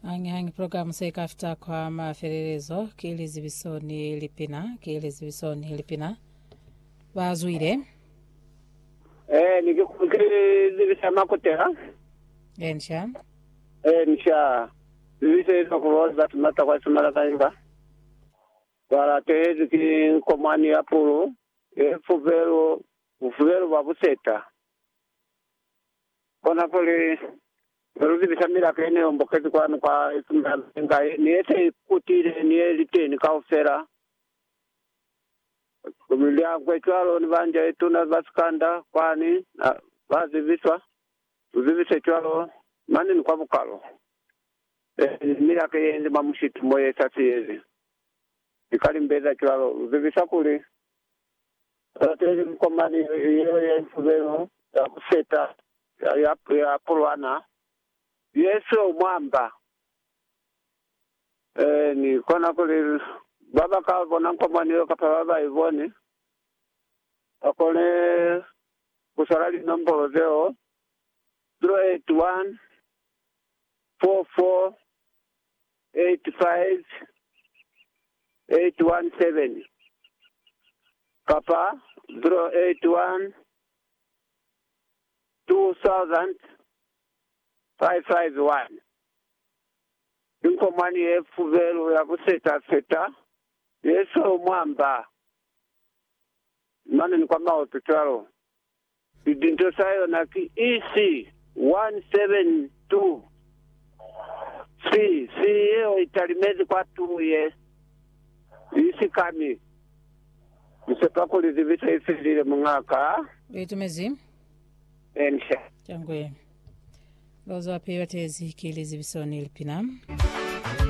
Hangi-hangi program se ka fita kwa mafelelezo ki lizibiso ni lipina, ki lizibiso ni lipina. Ba zwile. Eh, ni ke ku ke zibisa makutela. Ensha. Eh, ni sha. Zibisa ilo ku bo ba tumata kwa sumala ka imba. Wala tehezi ki nkomwani ya pulu, e fubelo, fubelo ba buseta. Kona kuli, Ze lu zibisa milaka ye ne hombokezi kwanu kwa Esmeralda ni nga ye, ni ye se ikutile ni ye li teni kaufela, liakwe cwalo ni banja ye tuna ba Sikanda kwani, na ba zibiswa, lu zibise cwalo mane ni kwa bukalo. Ee, milaka ye li mwa mushitu mo ye sa siyezi. Ni ka limbeza cwalo, lu zibisa kuli, Balateli, mukomani yeo ya lifubelo za ku feta ya pulwana ye siyo mwamba, ni kona kuli ba ba ka bona mukomani yeo kapa ba ba i boni, ba kone ku swala linombolo zeo, 081 44 85817 kapa 0812000551 Ki nko mwani ye fubelu ya ku seta seta ye seo mwa mba, mane ni kwa maoto cwalo. Sipinto sa yona ki EC 172. Si, si yeo i talimezi kwa tulu ye i sikami. Ni sepa kuli zibiso i felile, muñakaa. Lu itumezi? Encia. Cangwe. Lu zwapi batezi ki lizibiso ni lipina?